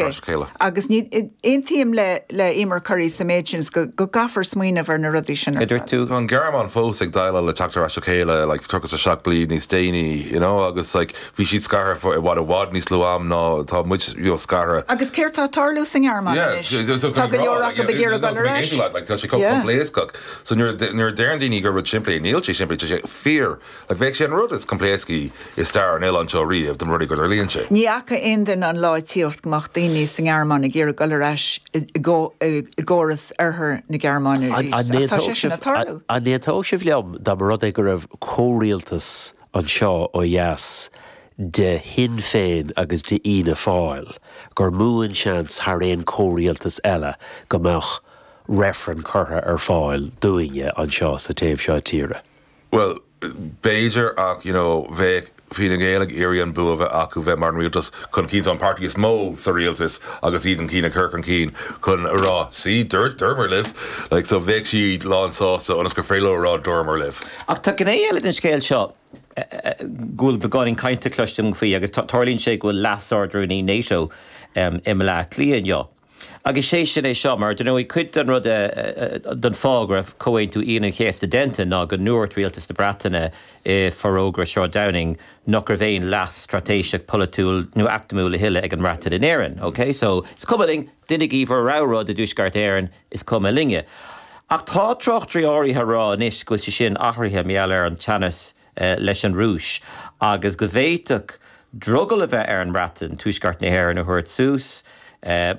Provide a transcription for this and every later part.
as a chéile. Agus ní, aontaím le, le Eimear Currie sa méid sin go, go gcaithfear smaoineamh ar na rudaí sin ar fad. Tá an Ghearmáin fós ag déileáil le teacht ar ais le chéile like, tríocha a seacht bliain níos déanaí you know, agus like, bhí siad scartha for i bhfad i bhfad níos lú am ná tá muid you know, scartha. Agus céard tá tarlú sa Ngearmáin yeah, anois? Tá go leor acu ag iarraidh goil ar ais. Tá sé coimpléascach. So nuair a deireann daoine gur rud simplí é níl sé simplí sé fear Ach beidh sé an rud is coimpléascaí i stair an oileáin seo riamh dá mba rud é go dtarlaíonn sé. Ní fhaca aon duine an lá ag tíocht go mbeadh daoine sa nGearmáin ag iarraidh dul ar ais i gcóras oirthear na Gearmáine arís, ach tá sé sin ag tarlú. An n-aontódh sibh liom dá mba rud é go raibh comhrialtas anseo ó dheas de Shinn Féin agus de Fhianna Fáil gur mó an seans thar aon comhrialtas eile go mbeadh reifreann curtha ar fáil dúinne anseo sa taobh seo tíre? Bhuel, b'fhéidir ach, you know, bheadh Fine Gael ag iarraidh an bua a bheith acu bheith mar an rialtas chun cinn, so an páirtí is mó sa rialtas agus iad an cinn ag cur chun cinn chun a rá see, dúirt, dúramar libh, like so bheadh siad lán sásta ionas gur féidir leo a rá dúramar libh. Ach tá gné eile den scéal seo go bhfuil beagáinín cainte cloiste agam faoi agus tarlaíonn sé go bhfuil Leas-Ard-Rúnaí Nato i mBleá Cliath inniu. Agus sé sin é seo, mar dar ndóigh cuid den rud a d'fhág Comhaontú Aoine an Chéasta déanta ná go ndúirt Rialtas na Breataine i Forógra Sráid Downing nach raibh aon leas straitéiseach polaitiúil nó eacnamúil a thuilleadh ag an mBreatain in Éirinn. OK, so, is cuma linn, deinigí bhur rogha rud i dTuaisceart Éireann, is cuma linne. Ach tá tráchtairí áirithe ag rá anois go bhfuil sé sin athraithe, mar gheall ar an teannas, leis an Rúis agus go bhféadfadh drogall a bheith ar an mBreatain Tuaisceart na hÉireann a thabhairt suas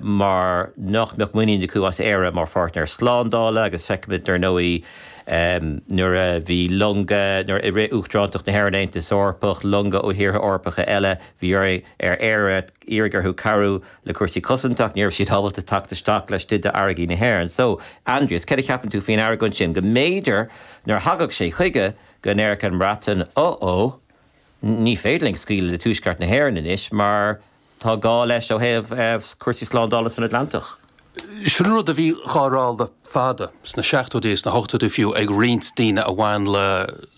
mar nach mbeadh muinín acu as Éire mar pháirtnéir slándála agus feicimid dar ndóigh nuair a bhí longa, nuair i rith Uachtarántacht na hÉireann Aontas Eorpach, longa ó thíortha Eorpacha eile, bhí orainn, ar Éire, iarraidh orthu cabhrú le cúrsaí cosanta, ní raibh siad ábalta teacht isteach laistigh d'fharraigí na hÉireann. So, Aindrias, céard a cheapann tú faoin argóint sin go mb'fhéidir nuair a thagadh sé chuige, go ndéarfadh an Bhreatain, Uh-oh, ní féidir linn scaoileadh le Tuaisceart na hÉireann anois mar tá gá leis ó thaobh cúrsaí slándála san Atlantach. Sin rud a bhí dhá rá le fada, sna seachtóidí is na hochtóidí fiú, ag roinnt daoine a bhain le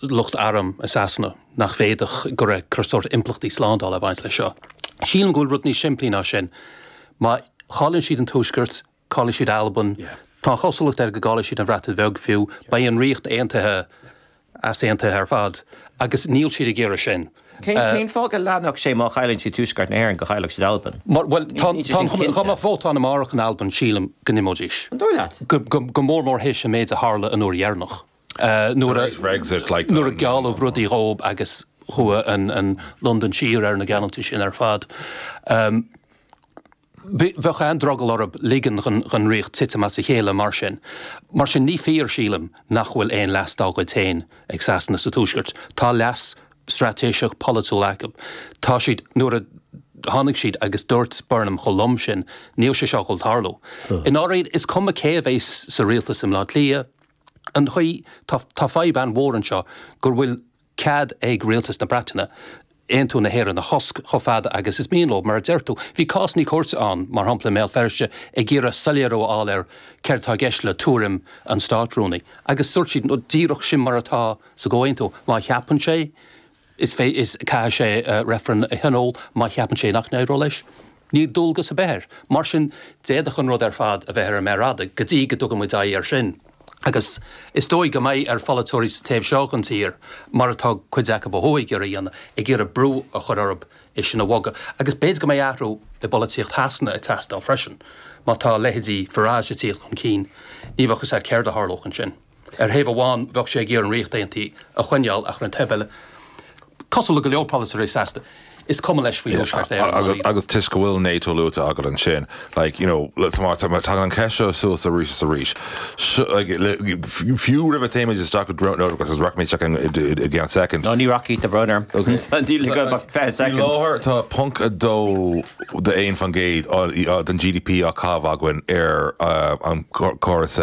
lucht airm i Sasana, nach bhféadfadh go raibh chuile shórt impleachtaí slándála ag baint leis seo. Sílim go bhfuil rud níos simplí ná sin. Má chailleann siad an Tuaisceart, caillfidh siad Albain, tá an chosúlacht air go gcaillfidh siad an Bhreatain Bheag fiú, beidh an Ríocht Aontaithe easaontaithe ar fad agus níl siad ag iarraidh sin. Cén fáth go leanfadh sé má chailleann siad Tuaisceart na hÉireann go gcaillfeadh siad Albain? Bhuel, tá an chuma air dá mbeadh vótáil amárach in Albain sílim go n-imeoidís, go mór mór théis an méid a tharla an uair dheireanach nuair a gealladh rudaí dhóibh agus chuaigh Londain siar ar na geallúintí sin ar fad. Bheadh an-drogall orthu ligean don Ríocht titim as a chéile mar sin. Mar sin, ní fíor, sílim, nach bhfuil aon leas dá gcuid féin ag Sasana sa Tuaisceart. Tá leas straitéiseach polaitiúil acu. Tá siad, nuair a tháinig sé agus dúirt Burnham chomh lom sin, níl sé seo ag dul ag tarlú. I ndáiríre, is cuma cé a bheas sa rialtas i mBleá Cliath, an chaoi, tá fadhb an-mhór anseo go bhfuil, cead ag Rialtas na Breataine aontú na hÉireann a chosc chomh fada agus is mian leo, mar a deir tú. Bhí cásanna cúirte ann, mar shampla, i mBéal Feirste ag iarraidh soiléiriú a fháil ar céard atá i gceist le tuairim an Státrúnaí agus dúirt siad, nó díreach sin mar atá sa gcomhaontú, má cheapann sé, is caithfidh sé reifreann a thionól, má cheapann sé nach n-éireodh leis, Níl dualgas ar bith air. Mar sin d'fhéadfadh an rud ar fad a bheith ar an méar fhada go dtí go dtugann muid aghaidh air sin. Agus is dóigh go mbeidh ar pholaiteoirí sa taobh seo den tír, mar atá cuid acu ó thuaidh ag iarraidh a dhéanamh, ag iarraidh brú a chur orthu é sin a bhogadh. Agus b'fhéidir go mbeidh athrú i bpolaitíocht Shasana ag teastáil freisin. Má tá leithéidí Farage ag tíocht chun cinn, ní bheadh a fhios agat céard a tharlódh ansin. Ar thaobh amháin bheadh sé ag iarraidh an Ríocht Aontaithe a choinneáil ach ar an taobh eile, cosúil le go leor polaiteoirí Shasana, is cuma leis faoi Thuaisceart Éireann ná Éire. Agus toisc go bhfuil NATO luaite agat ansin, like, you know, tagann an cheist seo suas arís is arís. Fiú roimh a théimid isteach go Drought Note agus rachaimid isteach ann i gceann soicind. No, ní rachaidh, a Bhrónár. Níl agam ach 20 soicind. Faoi láthair tá ponc a dó. a 1 faoin gcéad den GDP á chaitheamh againn ar an gcóras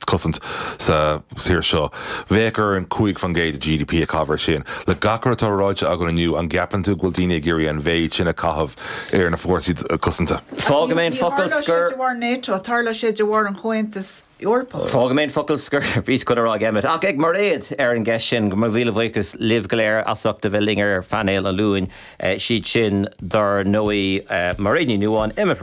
cosaint sa tír seo. Bheadh orainn 5 faoin gcéad de GDP a chaitheamh ar sin. Le gach rud atá ráite againn inniu, an gceapann tú go bhfuil daoine ag iarraidh an mhéid sin a chaitheamh ar na fórsaí cosanta? Fágfaidh mé an focal scoir. Níor tharla sé de bharr NATO, tharla sé de bharr an Chomhaontais. Eorpach. Fágfaidh mé an focal scoir faoi sin, chan ag Emmet, ach ag Mairéad, ar an gceist sin. Mo mhíle buíochas libh go léir as ucht a bheith linn ar phainéal an Luain. Siad sin, dár ndóigh, Mairéad Ní Nuadháin, Emmet.